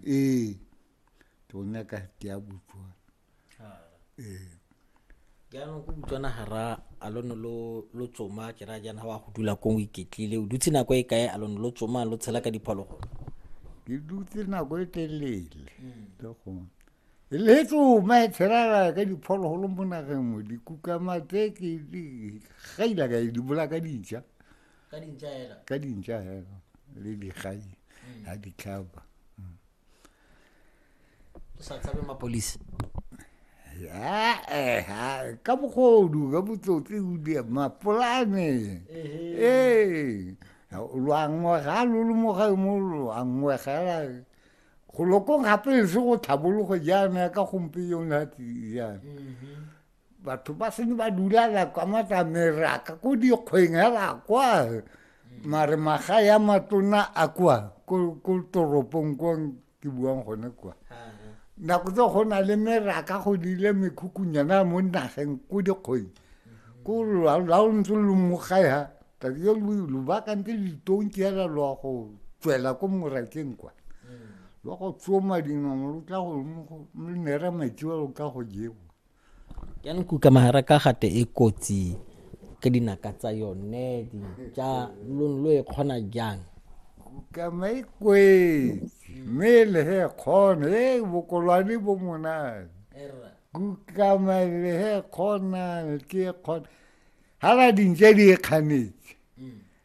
ee ke o nyaka ke ya botswana ee jaanong ko botswana ga ra a lo ne lo tsoma ke ra jaana wa go dula kong o iketlile o dutse nako e kae a lo ne lo tsoma lo tshela ka diphologolo ke dutse nako e telele le gone e le tsoma e tshelala ka diphologolo mo nageng mo dikukamatse ke gaila ka di bolaka dija ka dintša hela ka dintša hela le digai mm. ga ditlhaba mm. o sa tshabe mapolisi eh, ka bogodu ka botsotsi mapolane ee lwangwe ga lo le moga mo lwangwe gela go lokong gape se go tlhabologo jaana ka gompe yona jaana mm-hmm. batho ba sene ba dulala kwa matlameraka ko dikgweng hela kwa mare maga ya matona a kwa ko toropong kwa ke buang gone kwa nako tse go na le meraka go dile mekhukunyana mo nageng ko dikgweng ko la o ntse lo mogae ha tsatsi yo lo bakantse litonki hela lo ya go tswela ko morakeng kwa lo go tsoma dinong lo tla go mo nera metsi wa lo tla go jewa ya nkuka mahara ka gate e kotsi ka dinaka tsa yone ja lone lo e kgona jang kama e kwetse mme e le he kgona e bokolwane bo monane kukama e le he kgonane ke e kgona ga ba dintse di e kganetse mm.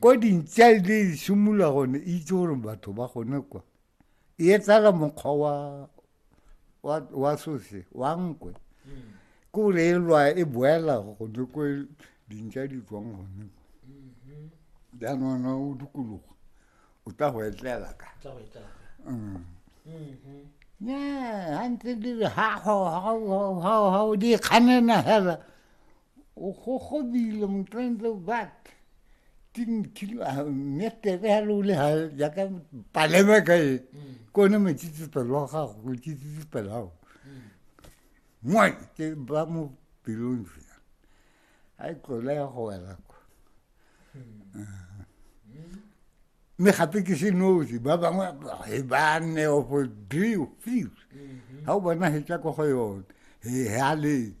ko dintsa e le simolola gone e itse gore batho ba gone kwa e etsala mokgwa wa wa wa sose wa nkwe ke gore e lwa e boela gone ko dintsa di tswang gone jaanona o dikologo o tla go etlela ka ya gantse di re ha o di kganena fela O gogobile motlantle but tinkilo ah, mme tebe ya lole ha jaaka palema ka e mm. ke one matsitsipelo wa gago o tsitsipelo ao mwa mm. ke ba mo pelong fela a e tlola ya go wela ko mm. ah. mme gape ke se nosi ba bangwe e ba nne opo deo few ga mm-hmm. o bona hetsa ko go yone e a letse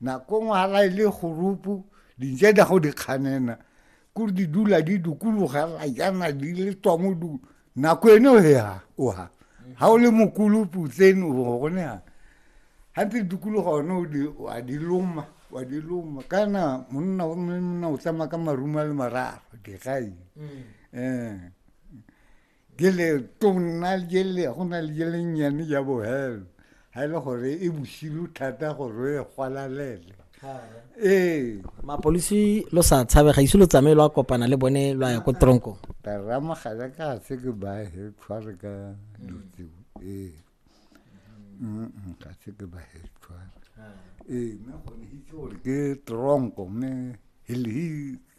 Nakong hala e le gorupu, dintse da go di kganena, kore di dula di dukulogela jana di le tswa mo du. Nako ene o ha, o ha. Ha o le mokulupu tsene o gone ha. Ha ntse dukuluga one o di, wa di loma, wa di loma. Kana monna o monna o tsamaya ka maruma le mararo, digai. Mm. Eh. Jele tona jele go na le jele nnyane ja bohelo ga e le gore e bosilu thata gore e gwalalele ee mapolisi lo sa tshabe ga ise lo tsamaye lo a kopana le bone lo a ya ko tronko taramagala ka se ke ba he tshware ka dutse ee ka se ke ba he tshware ee mme go ne itse gore ke tronko mme he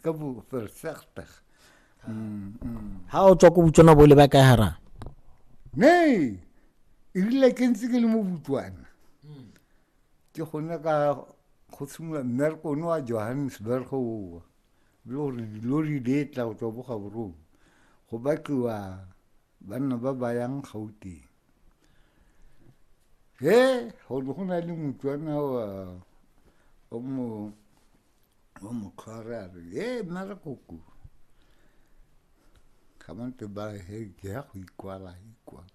ka bo fersegtag mm, mm. ha o tswa ko botswana bo le ba kae harang ne erile ke ntse ke le mo botswana ke gone ka go simolola mmereko one wa johannesburg owa le gore dilori di e tla go tswa bogaborong go batliwa banna ba ba yang gauteng e go ne go na le motswana wa o mo o mo tlhware a re e nna re koko ga ba ntse ba he ke ya go ikwala ikwala